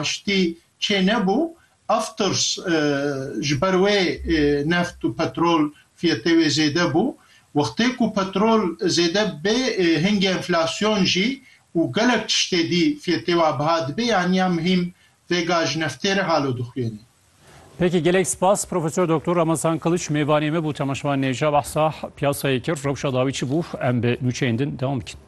Aştî çê nebû, Afters ji ber wê neft û petrol fiyetê wê zêde bû. Wextê ku petrol zêde bibê, hingê enflasyon jî û gelek tiştê dî fiyetê wa biha dibê, yanî ya muhîm vêga ji neftê re halo dixwîyenê. Peki gelek spas Profesör Doktor Ramazan Kılıç mêvanê me bû temaşevan nêja behsa piyasayê kir rewşa dawî çi bû em bi nûçeyên din devam bikin.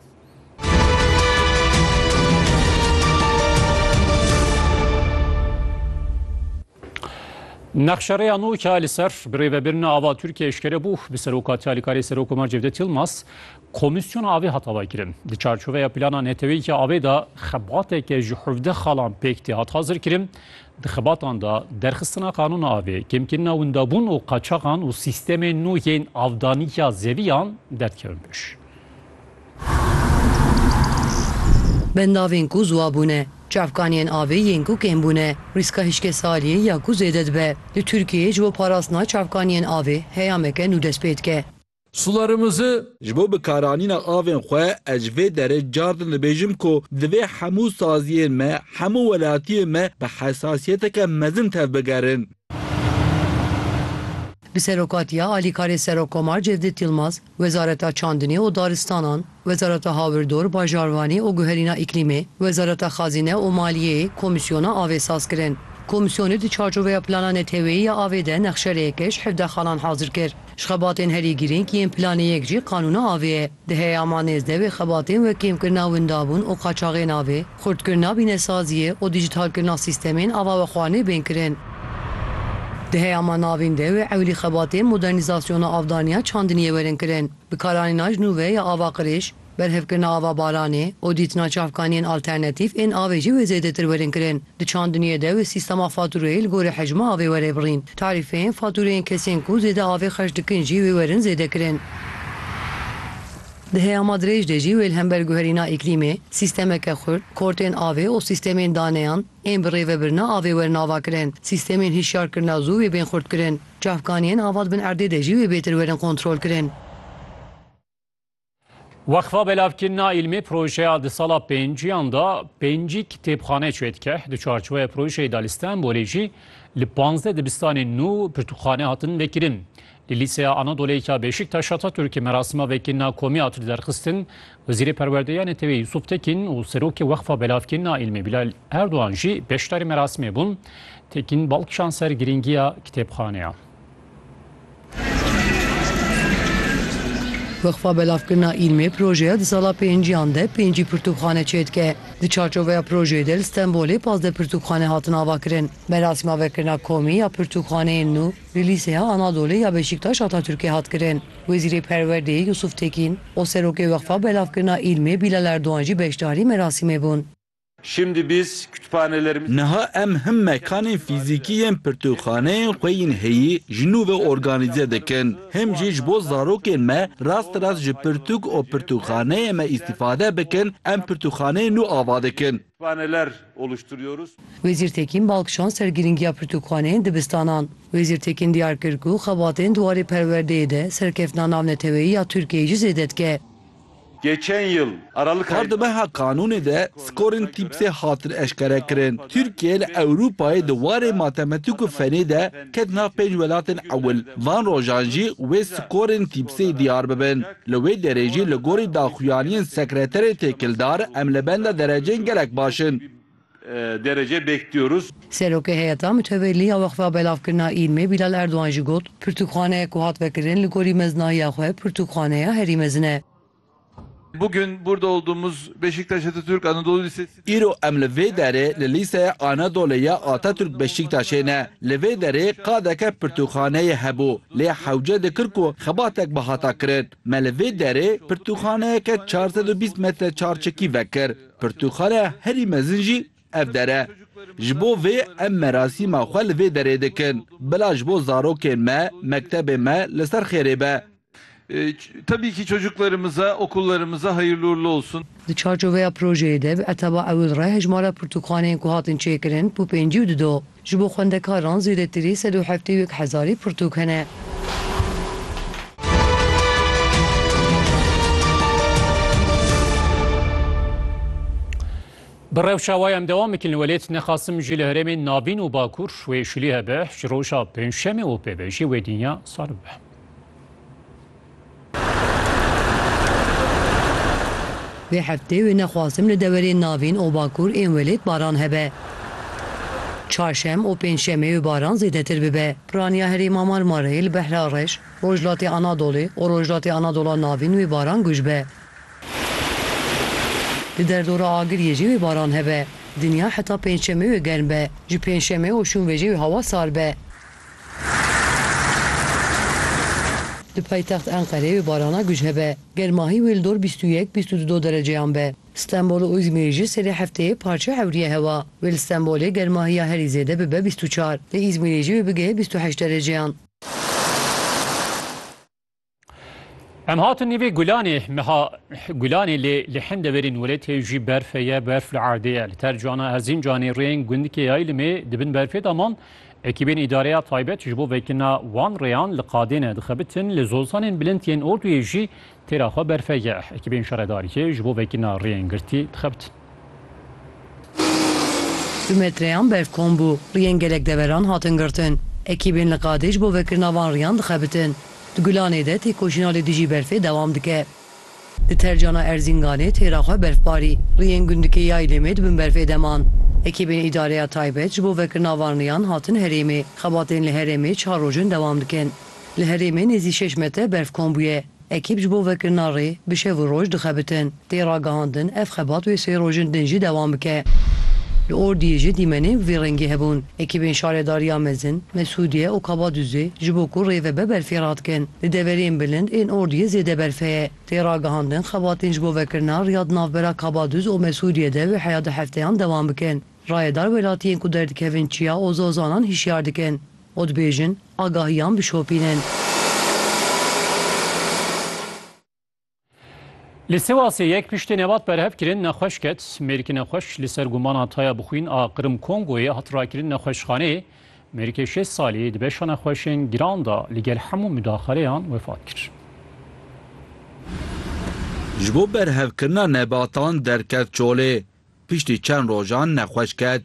Nexşereya nû ka li ser bi rêvebirina ava Tirkiye eşkere bû bi serokatiya li karê Serok Komar Cevdet Yılmaz komisyona avê hat avakirin. Di çarçoveya plana neteweyê ki avê de xebateke ji hevdeh xalan pêk tê hat hazirkirin. Di xebatan de derxistina qanûna avê, kêmkirina windabûn û qaçaxan û sîstemên nû yên avdaniya zeviyan derdikevin pêş. Bendavên ku ziwa bûne, çavkaniyên avê yên ku kêm bûne, rîska hişkesaliyê ya ku zêde dibe. Li Tirkiyeyê ji bo parastina çavkaniyên avê heyameke nû dest pê dike. sularimizi. Ji bo bikaranîna avên xwe ez ji vê derê car din dibêjim ku divê hemû saziyên me, hemû welatiyên me bi hesasiyeteke mezin tevbigerin. Bi serokatiya alîkarê Serokkomar Cevdêt Yilmaz, Wezareta Çandinê û Daristanan, Wezareta Hawirdor, Bajarvanî û Guherîna Îklîmê, Wezareta Xazîne û Maliyê komîsyona avê saz kirin. Komîsyonê di çarçoveya plana neteweyî ya avê de nexşerêyekeş hevdeh xalan hazir kir. Ji xebatên herî girîng yên planê yek jî qanûna avê ye. Di heyama nêzdeh wê xebatên wek kêmkirina windabûn û qaçaxên avê, xurtkirina bînesaziyê û dîjîtalkirina sîstemên avawexwarinê bên kirin. Di heyama navîn de wê ewlî xebatên modernîzasyona avdaniya çandiniyê werin kirin. Bi karanîna ji nû ve ya ava qirêj, berhevkirina ava baranê û dîtina çavkaniyên alternatîf ên avê jî wê zêdetir werin kirin. Di çandiniyê de wê sîstema fatûreyê li gorî hecma avê were birîn. Tarîfeyên fatûreyên kesên ku zêde avê xerc dikin jî wê werin zêdekirin. Di heyama dirêj de jî wê li hember guherîna îklîmê, sîstemeke xurt, kortên avê û sîstemên daneyan ên bi rêvebirina avê werin avakirin. Sîstemên hişyarkirina zû wê bên xurtkirin. Çavkaniyên ava dibin erdê de jî wê bêtir werin kontrolkirin. Weqfa Belavkirina Îlmê projeya di sala pênciyan de pêncî kitêbxane çê dike. Di çarçoveya projeyê de li Stenbolê jî li panzdeh dibistanên nû pirtûkxane hatin vekirin. Li Lîseya Anadolê ya Beşîktaş Atatürkê merasima vekirina komî hat derxistin, Wezîrê Perwerdeyê ya neteweyî Yusuf Tekîn û Serokê Weqfa Belavkirî na Îlmê Bilal Erdogan jî beşdarî merasimê bûn. Tekîn bal kişand ser girîngiya kitêbxaneya. Weqfa Belavkirina Îlmê projeya di sala pênciyan de pêncî pirtûkxane çêdike. Di çarçoveya projeyê de li Stenbolê pazdeh pirtûkxane hatin avakirin. Merasîma vekirina komî ya pirtûkxaneyên nû li Lîseya Anadolê ya Beşîktaş Atatürkê hat kirin. Wezîrê Perwerdeyê Yusuf Tekîn û Serokê Weqfa Belavkirina Îlmê Bîlal Erdogan jî beşdarî merasîmê bûn. Niha em him mekanên fîzîkî yên pirtûkxaneyên xwe yên heyî ji nû ve organîze dikin, him jî ji bo zarokên me rasterast ji pirtûk û pirtûkxaneyê me îstîfade bikin, em pirtûkxaneyên nû ava dikin. Wezîr Tekîn bal kişand ser girîngiya pirtûkxaneyên dibistanan. Wezîr Tekîn diyar kir ku xebatên di warê perwerdeyê de serkeftina navneteweyî ya Tirkiyeyê jî zêde dike. Her di meha kanûnê de skorên TIPS'ê hatin eşkerekirin. Tirkiye li Ewropayê di warê matematîk û fenê de ket nav pênc welatên ewil. Van rojan jî wê skorên TIPS'ê diyar bibin. Li wê derê jî li gorî daxuyaniyên sekreterê têkildar em li benda dereceyên gelek baş in. derece bekliyoruz. Serokê Heyeta Mitewelî ya Wexfa Belavkirina Îlmê Bîlal Erdogan jî got, Pirtûkxaneyek ku hat vekirin li gorî mezinahiya xwe pirtûkxaneya herî mezin e. Bugün burada olduğumuz Beşiktaş Atatürk Anadolu Lisesi. Îro em li vê derê li Lîseya Anadolê ya Atatürk Beşîktaşê ne. Li vê derê qadeke pirtûkxaneyê hebû, lê hewce dikir ku xebatek bi hata kirin. Me li vê derê pirtûkxaneyeke çar sed û bîst metre çarçekî vekir. Pirtûkxaneya herî mezin jî ev der e. Ji bo vê em merasîma xwe li vê derê dikin. Bila ji bo zarokên me, mektebê me li ser xêrê be. Tabii ki çocuklarımıza, okullarımıza hayırlı uğurlu olsun. Di çarçoveya projeyê de bi etaba ewil re hejmara pirtûkxaneyên ku hatin çêkirin bi pêncî û dido. Ji bo xwendekaran zêdetirî sed û heftê û yek hezarî pirtûk hene. Bi rewşa wa em dewam bikin li welêt nexasim jî li herêmên navîn û bakur wê şilî hebe ji roja pêncşemê û pêvejî wê dinya sar bibe. Vê heftê wê nexwazim li dewerên navîn û bakur ên welêt baran hebe. Çarşem û pêncşemê wê baran zêdetir bibe. Piraniya herêma Marmarayê li Behra Reş, Rojhilatê Anadolê û Rojhilatê Anadola Navîn wê baran guj be. Di derdora Agiriyê jî wê baran hebe. Dinya heta pêncşemê wê germ be. Ji pêncşemê û şûnvejê wê hewa sar be. Di paytext Enqerê bi barana guj hebe. Germahî wê li dor bîst û yek bîst û du do dereceyan be. Stenbol û Îzmîrê jî serê hefteyê parçe ewrîye hewa. Wê li Stenbolê germahiya herî zêde bibe bîst û çar. Li Îzmîrê jî wê bigeye bîst û heşt dereceyan. Em hatin nîvê Gulanê meha Gulanê lê li hin deverên weletê jî berfe ye berf li erdê ye. Li ter cana Erzincanê rêyên gundikê Yaylimê dibin berfê de man. Ekîbên îdareya taybet ji bo vekirina wan rêyan li qadêne dixebitin. Li zolsanên bilind yên orduyê jî têra xwe berfe ye. Ekîbên şaredariyê ji bo vekirina rêyên girtî dixebitin. Du metreyan berf kom bû, riyên gelek deveran hatin girtin. Ekîbên li qadê ji bo vekirina van riyan dixebitin. Di Gulanê de têkoşîna li dijî berfê dewam dike. Di tercana Erzînganê têra xwe berf barî, riyên gundikê Yaylêmê di bin berfê de man. Ekîbên îdareya taybet ji bo vekirina van riyan hatin herêmê. Xebatên li herêmê çar roj in dewam dikin. Li herêmê nêzî şeş metre berf kom bûye. Ekîp ji bo vekirina rê bi şev û roj dixebitin. Tê ragihandin ev xebat wê sê rojên din jî dewam bike. Li Ordiyê jî dîmenên bi vî rengî hebûn. Ekîbên Şaredariya Mezin, Mesûdiye û Kabadûzê ji bo ku rê vebe berfê radikin. Di deverên bilind ên Ordiyê zêde berf heye. Tê ragihandin xebatên ji bo vekirina riya di navbera Kabadûz û Mesûdiyê de wê heya du hefteyan dewam bikin. Rayedar welatiyên ku derdikevin Çiya û Zozanan hişyar dikin. û dibêjin agahiyan bişopînin. Li Sêwasê yek piştê nebat berhev kirin nexweş ket. Mêrikê nexweş li ser gumana taya bixwîn a Qrim Kongoyê hat rakirin nexweşxaneyê. Mêrikê şêst salî di beşa nexweşên giran de li gel hemû mudaxaleyan wefat kir. Ji bo berhevkirina nebatan derket çolê. Piştî çend rojan nexweş ket.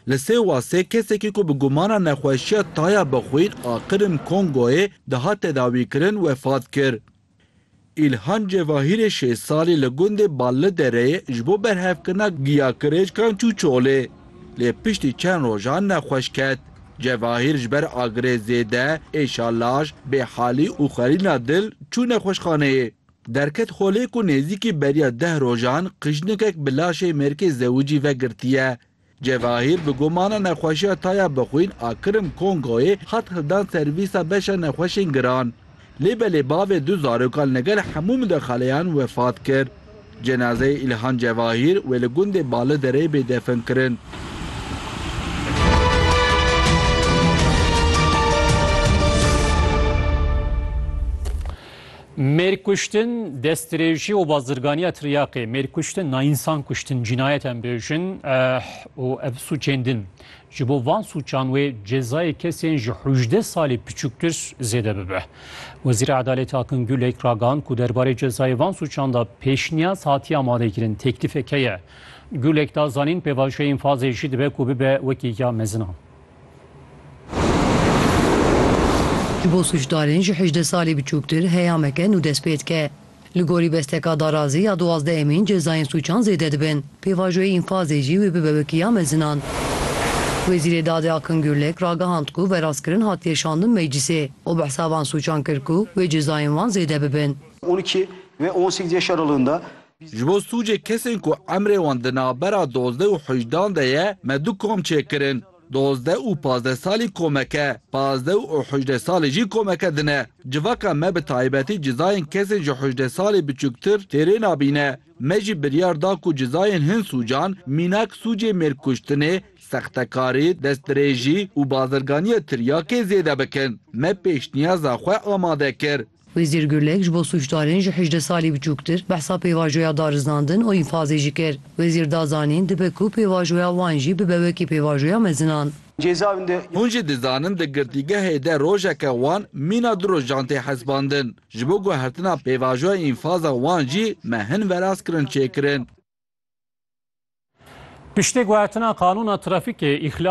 Li Sêwasê kesekî ku bi gumana nexweşiya taya bi xwîn a Qirm Kongoyê dihat tedawîkirin wefat kir. Îlhan Cevahîrê şêst salî li gundê Ballidereyê ji bo berhevkirina giya kirêckan çû çolê. Lê piştî çend rojan nexweş ket. Cevahîr ji ber agirê zêde, êşa laş, bêhalî û xwerîna dil çû nexweşxaneyê. Derket xolê ku nêzîkî beriya deh rojan qijnikek bi laşê mêrkê zewicî ve girtiye. Cevahîr bi gomana nexweşiya Taya Bixwîn a Kirim Kongoyê hat hildan servîsa beşa nexweşên giran. Lê belê bavê du zarokan li gel hemû midexaleyan wefat kir. Cenazeyê Îlhan Cevahîr wê li gundê Balidereyê bê definkirin. Mêrkuştin, destdirêjî û bazirganiya tiryaqê, mêrkuştin na însan kuştin cînayet em bêjin eh û ev sûcên din. Ji bo van sûcan wê cezayê kesên ji hûjdeh salî piçûktir zêde bibe. Wezîra Edalêt Akin Gulek ragihand ku derbarê cezayê van sûcan de pêşniyaz hatiye amadekirin, têklîfek heye. Gulek da zanîn pêvajoyê înfazê jî dibe ku bibe wekî ya mezin a. Ji bo sûcdarên ji hejdeh salî biçûktir heyameke nû dest pê dike. Li gorî besteka darazî ya duwazdeh emîn cezayên sûcan zêde dibin. Pêvajoyê înfazê jî wê bibe wekî ya mezinan. Wezîrê Dadê Akin Gurlek ragihand ku verastkirin hatiye şandin meclîsê û bi hesaban sûcan kir ku wê cezayên wan zêde bibin. On iki ve on sêzdeh Şaralığında Ji bo sûcê kesên ku emrê wan di navbera dozdeh û hejdan de ye me du kom çêkirin. Dozdeh û pazdeh salî komeke, pazdeh û hejdeh salî jî komeke din e. Civaka me bi taybetî cizayên kesên ji hejdeh salî biçûktir têrê nabîne. Me jî biryar da ku cizayên hin sûcan mînak sûcê mêrkuştinê, sextekarî, destdirêjî û bazirganiya tiryakê zêde bikin. Me pêşniyaza xwe amade kir. Wezîr Gurlek ji bo sûcdarên ji hejdeh salî biçûktir behsa pêvajoya darizandin û înfazê jî kir. Wezîr da zanîn dibe ku pêvajoya wan jî bibe wekî pêvajoya mezinan. Hûn jî dizanin di girtîgehê de rojeke wan mîna du rojan tê hesbandin. Ji bo guhertina pêvajoya înfaza wan jî me hin veraz kirin çêkirin. Piştî guhertina qanûna trafîkê, îxlal